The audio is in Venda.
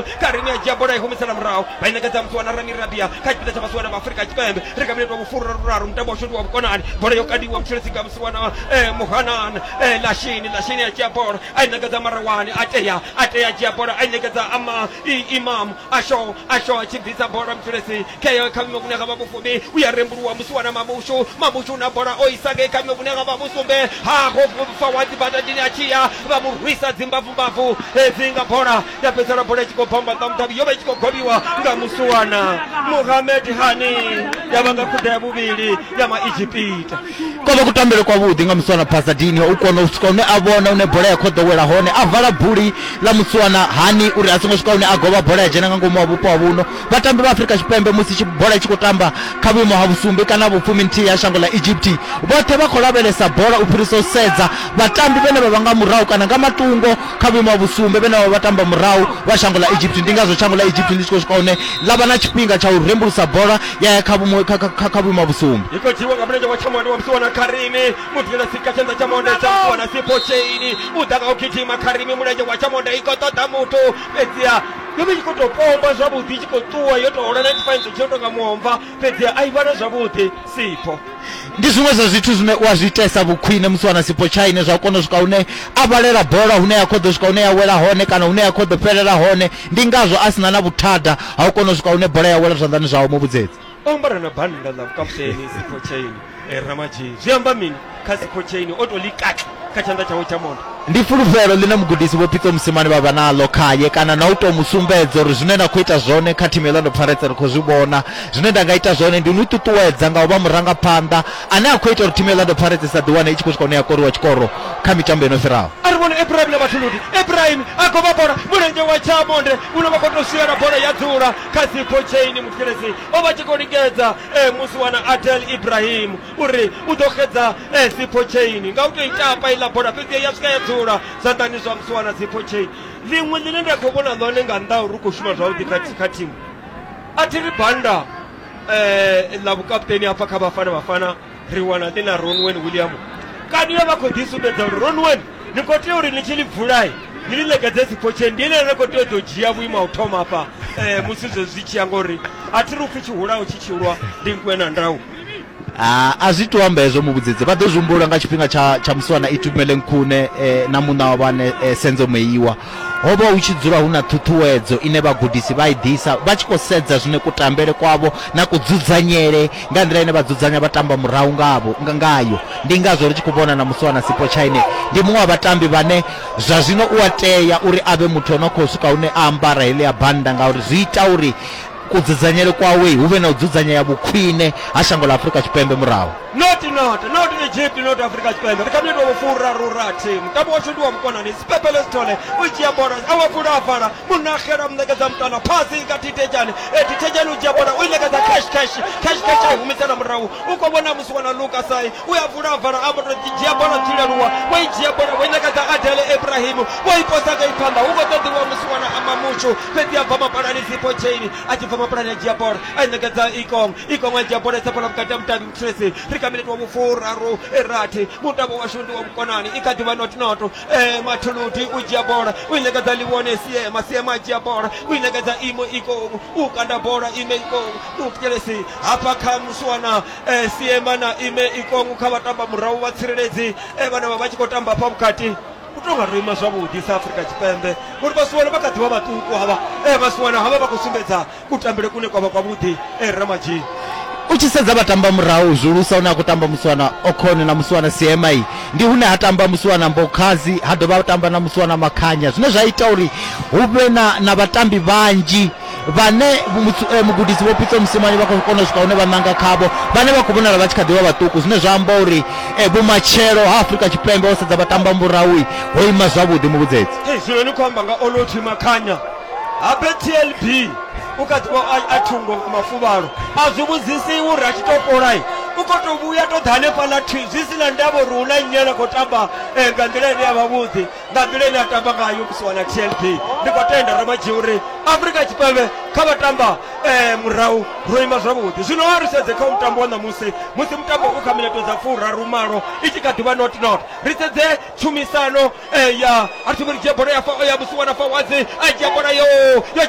karini ya dzhia bola i humisela murahu vha i nekedza muthu wana rami rabia kha tshipiḓa tsha masiwana ma afurika tshipembe ri kha minete wa vhufuru ra ruraru mutambo wa shoti wa vhukonani bola yo kadiwa mutshilisi nga musiwana eh, muhanana eh, lashini lashini ya dzhia bola a i nekedza marewani a tea a tea a dzhia bola a i nekedza ama i- imam asho asho a tshi bvisa bola mutshilisi kheyo kha vhime vhune ha vha vhufumi u ya rembuluwa musiwana mabushu mabushu na bola o isa ngei kha vhime vhune ha vha vhusumbe ha ho fa wa dzibadadini a tshi ya vha mu rwisa dzimbavumbavu hedzi nga bola ya fhedzisela bola i tshi khou bva mbaḓa mudavhi yo vha i tshi khou gobiwa nga musuwana muhamed hani ya vha nga khuda ya vhuvhili ya maegipita kwa vha kutambele kwavhuḓi nga musuwana pasadini u kona u swika hune a vhona une bola ya khoḓo wela hone a vala buli ḽa musuwana hani uri a songo swika hune a govha bola ya dzhena nga ngomu wa vhupo ha vhuno vhatambi vha afurika tshipembe musi tshi- bola i tshi khou tamba kha vhuimo ha vhusumbe kana vhufumi nthihi ha shango ḽa egypt vhoṱhe vha khou lavhelesa bola u fhirisa u sedza vhatambi vhene vha vha nga murahu kana nga matungo kha vhuimo ha vhusumbe vhene vha vha tamba murahu vha shango ḽa egypt ndi ngazwo shango ḽa egypt ḽi tshi khou swika hune ḽa vha na tshifhinga tsha u rembulusa bola ya ya kha vhumo- kha- kha- kha vhuimo ha vhusumbe i khou dzhiwa nga mulenzhe wa tshamonde wa musiwana kharimi muthu ela sika tshanḓa tsha monde tsha musiwana sipho cheini u ḓa nga u gidima kharimi mulenzhe wa tshamonde i khou ṱoḓa muthu fhedziha yo vha i tshi khou tou pomba zwavhuḓi i tshi khou ṱuwa yo tou hola 95 zwi tshi no tonga muomva fhedziha a i vhale zwavhuḓi sipho ndi zwiṅwe zwa zwithu zwine u a zwi itesa vhukhwine musi wana sipo tshaine zwa kona u swika hune a vhalela bola hune ya khou ḓo swika hune ya wela hone kana hune ya khou ḓo fhelela hone ndi ngazwo a sina na vhuthada ha u kona u swika hune bola ya wela zwanḓani zwawe mu vhudzedzi o ambara na bannda ḽa vhukaputeni sipo tshaine eh, ramadzhei zwi amba mini kha sipo tshaine o to ḽi kati kha tshanḓa tshawe tsha mondo. Ndi fulufhelo ḽine mugudisi Vho Pitso Mosimane vha vha naḽo khae kana na u tou mu sumbedza uri zwine na khou ita zwone kha thimu ya Orlando Pirates ri khou zwi vhona. Zwine nda nga ita zwone ndi u ni ṱuṱuwedza nga u vha murangaphanḓa ane a khou ita uri thimu ya Orlando Pirates i sa ḓiwane i tshi khou swika hune ya koriwa tshikoro kha mitambo yo no fhiraho. A ri vhone Ebrahim na Vhathuludi. Ebrahim a goba bola mulenzhe wa Tshamonde une wa khou tou swiela bola ya dzula kha dzipho tsheini. Muthikiledzi o vha a tshi khou lingedza e musi wana Adel Ebrahim. uri u ḓo xedza eh, sipho chain nga u tou i tapa iḽa bola fhedzi ya swika ya dzula zwanḓani zwa musiwana sipho chain ḽiṅwe ḽine nda khou vhona ḽone nga nnḓa uri u khou shuma zwavhuḓi kha thi- kha thimu a thi ri banda um ḽa vhukaputeni hafha kha vhafana vhafana ri wana ḽi na ronwen william kani yo vha khou ḓi sumbedza uri ronwen ni khou tea uri ni tshi ḽi vulai ni ḽi ṋekedze siphotshe ndi ine ni khou tea u ḓo dzhia vhuimo ha u thoma hafha um musi zwezwi zwi tshi ya ngori a thi ri upfhi tshihulaho tshi tshilwa ndi nkuwe na ndau Ah, a zwi to amba hezwo muvhudzedze vha ḓo zwi humbula nga tshifhinga tsha tsha musiwana itumele nkhune eh, na muṋa wa vhane eh, senzo meiwa ho vha hu tshi dzula hu na ṱhuṱhuwedzo ine vhagudisi vha i ḓisa vha tshi khou sedza zwine kutambele kwavho na kudzudzanyele nga nḓila ine vha dzudzanya vha tamba murahu ngavho nga- ngayo ndi ngazwo ri tshi khou vhona na musiwana sipo chine ndi muṅwe wa vhatambi vhane zwa zwino u a tea uri a vhe muthu o no khou swika hune a ambara heḽia bannda ngauri zwi ita uri kudzudzanyele kwawe hu vhe na u dzudzanyea vhukhwine ha shango ḽa Afrika Tshipembe murahu. Not not not Egypt not Afrika Tshipembe ri kha minitwa vho furaru rathi mutambo washu ndi wa vhukonani Sipepele Sithole u dzhia bola a wa fula a vala Munahela mu ṋekedza muṱana phasi kha Thithejani e Thithejani u dzhia bola u i ṋekedza Cash Cash Cash Cash a i humisela murahu u khou vhona musi wana Luka Sai u ya vula vala a vhoto ḓi dzhia bola dzi leluwa wo i dzhia bola wo i ṋekedza adele ibrahimu wo i posa nga i phanḓa hu khou ṱoḓiwa musi wana amba mutshu fhedzi a bva mapalani sipo chaini a tshi bva mapalani a dzhia bola a i ṋekedza ikong ikong a dzhia bola i sa bola vhukati ha mudavhi muthulesi ri kha minete wa vhufuraru e rathi mutavho washu ndi wa vhukonani i kha ḓivha notnoto e mathuludi u dzhia bola u i ṋekedza liwone siema siema a dzhia bola u i ṋekedza imo ikong u kanda bola ime ikong muthulesi hafha kha muswana eh, siema na ime ikongu kha vhatamba murahu vha tsireledzi eh, vhane vha vha tshi khou tamba hafha vhukati u tou nga ro ima zwavhuḓi sa afrika tshipembe ngori vhasiwana vha kha ḓivha vhaṱuku havha eh, vhasiwana havha vha khou sumbedza kutambele kune kwa vha kwavhuḓi eh, ramadzhini u tshi sedza vhatamba murahu zwihulusa hune a khou tamba musiwana okhone na musiwana siema iyi ndi hune ha tamba musiwana mbokhazi ha dovha a tamba na musiwana makhanya zwine zwa ita uri hu vhe na, na vhatambi vhanzhi vhane mutsu- eh, mugudisi vho pitso musimani vha khou kona u swika hune vha ṋanga khavho vhane vha khou vhonala vha tshi kha ḓivha vhaṱuku zwine zwa amba uri eh, vhumatshelo ha afurika tshipembe ho sedza vhatamba murahui ho ima zwavhuḓi muvhudzedzi Ee, zwino ni khou amba nga olotwi makhanya habe tlb u kha ḓivha a- a thungo nga mafuvhalo a zwi vhudzisi iwe uri a tshi to fholai u khou tou vhuya to ḓa hanefhaḽa thi zwi si na ndavha uri hu na nnyi ane a khou tamba eh, nga nḓila ine ya vha vhuḓi nga nḓila ine a tamba ngayo musi wana tlb ndi khou tenda ramadzhi uri afurika tshipembe kha vha tamba eh, murahu ro ima zwavhuḓi zwino a ri sedze kha mutambo wa ṋamusi musi mutambo u kha mineto dza furaru malo i tshi kha ḓivha not not ri sedze tshumisano eh, ya a thi vhori dzhia bola ya fa- ya musi wana fawadzi a dzhia bola yo yo